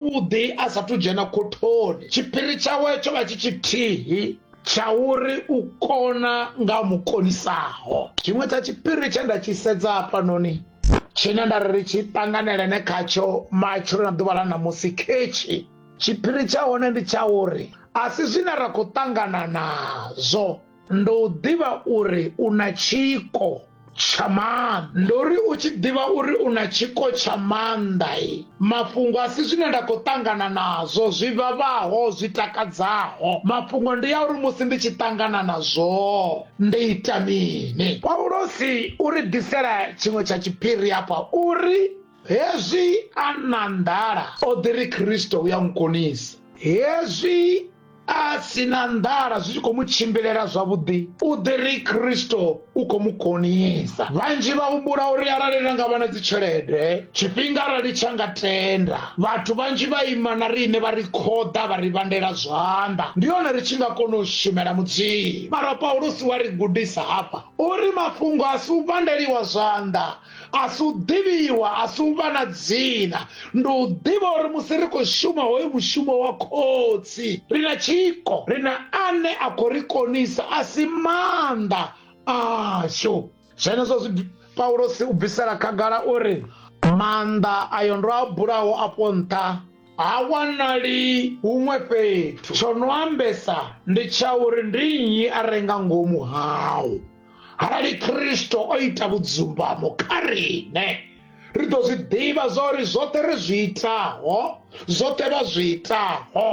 zwavhuḓi a sathu dzhena khothoni tshiphiri tshawe tsho vha tshi tshithihi tsha uri u kona nga mukonisaho tshiṅwe tsha tshiphiri tshe nda tshi sedza hafhanoni tshine nda ri ri tshi ṱanganelene khatsho matshilo na ḓuvha ḽa ṋamusi khetshi tshiphiri tsha hone ndi tsha uri a si zwine ra khou ṱangana nazwo ndo u ḓivha uri u na tshiko tsha maanḓa ndo ri u tshi ḓivha uri u na tshiko tsha maanḓa e mafhungo a si zwine nda khou ṱangana nazwo zwi vhavhaho zwi takadzaho mafhungo ndi ya uri musi ndi tshi ṱangana nazwo ndi ita mini paulosi u ri ḓisela tshiṅwe tsha tshiphiri afha uri hezwi a na nḓala o ḓi ri khristo u ya nkonisa hezwi a si na nḓala zwi tshi khou mu tshimbilela zwavhuḓi u ḓi ri kristo u khou mu konisa vhanzhi vha humbula uri arali ra nga vha na dzitshelede tshifhinga arali tsha nga tenda vhathu vhanzhi vha ima na riṋe vha ri khoḓa vha ri vhandela zwanḓa ndi hone ri tshi nga kona u shumela mudzimu mara paulusi wa ri gudisa hafha uri mafhungo a si u vhandeliwa zwanḓa a si u ḓivhiwa a si u vha na dzina ndi u ḓivha uri musi ri khou shuma hoyu mushumo wa khotsi ri na tshiko ri na ane a khou ri konisa a si maanḓa ashu zwenezwo zwi paulosi u bvisela khagala uri maanḓa ayo ndo a bulaho afho nṱha ha wanali huṅwe fhethu tsho no ambesa ndi tsha uri ndi nnyi a renga ngomu hao arali khristo o ita vhudzumbamo kha riṋe ri ḓo zwi ḓivha zwa uri zwoṱhe ri zwi itaho zwoṱhe vha zwi itaho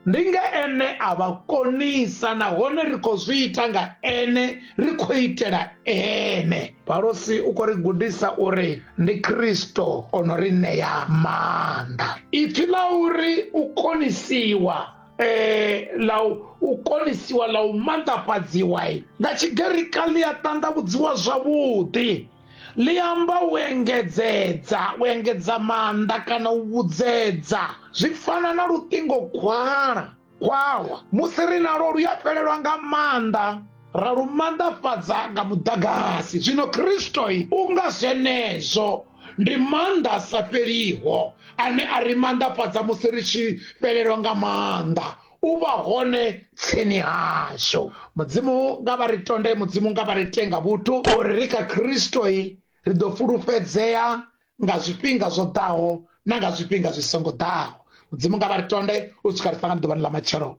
ndi nga ene a vha konisa nahone ri khou zwi ita nga ene ri khou itela ene palosi u khou ri gudisa uri ndi khristo o no ri ṋea maanḓa ipfi ḽa uri u konisiwa eh, ḽa u konisiwa ḽa u manḓafhadziwa nga tshigerika ḽi a ṱanḓavhudziwa zwavhuḓi ḽi amba u engedzedza u engedza maanḓa kana u vhudzedza zwi fana na luṱingo khwala khwalwa musi ri nalo lu ya fhelelwa nga maanḓa ra lu manḓafhadza nga muḓagasi zwino kristo u nga zwenezwo ndi maanḓa a sa fheliho ane a ri maanḓafhadza musi ri tshi fhelelwa nga maanḓa u vha hone tsini hashu mudzimu nga vha ri tonde mudzimu nga vha ri tenga vhuthu uri ri kha kristoi ri ḓo fulufhedzea nga zwifhinga zwo ḓaho na nga zwifhinga zwi songo ḓaho mudzimu nga vha ri tonde u swika ri fanga ḓuvhani ḽa matshelo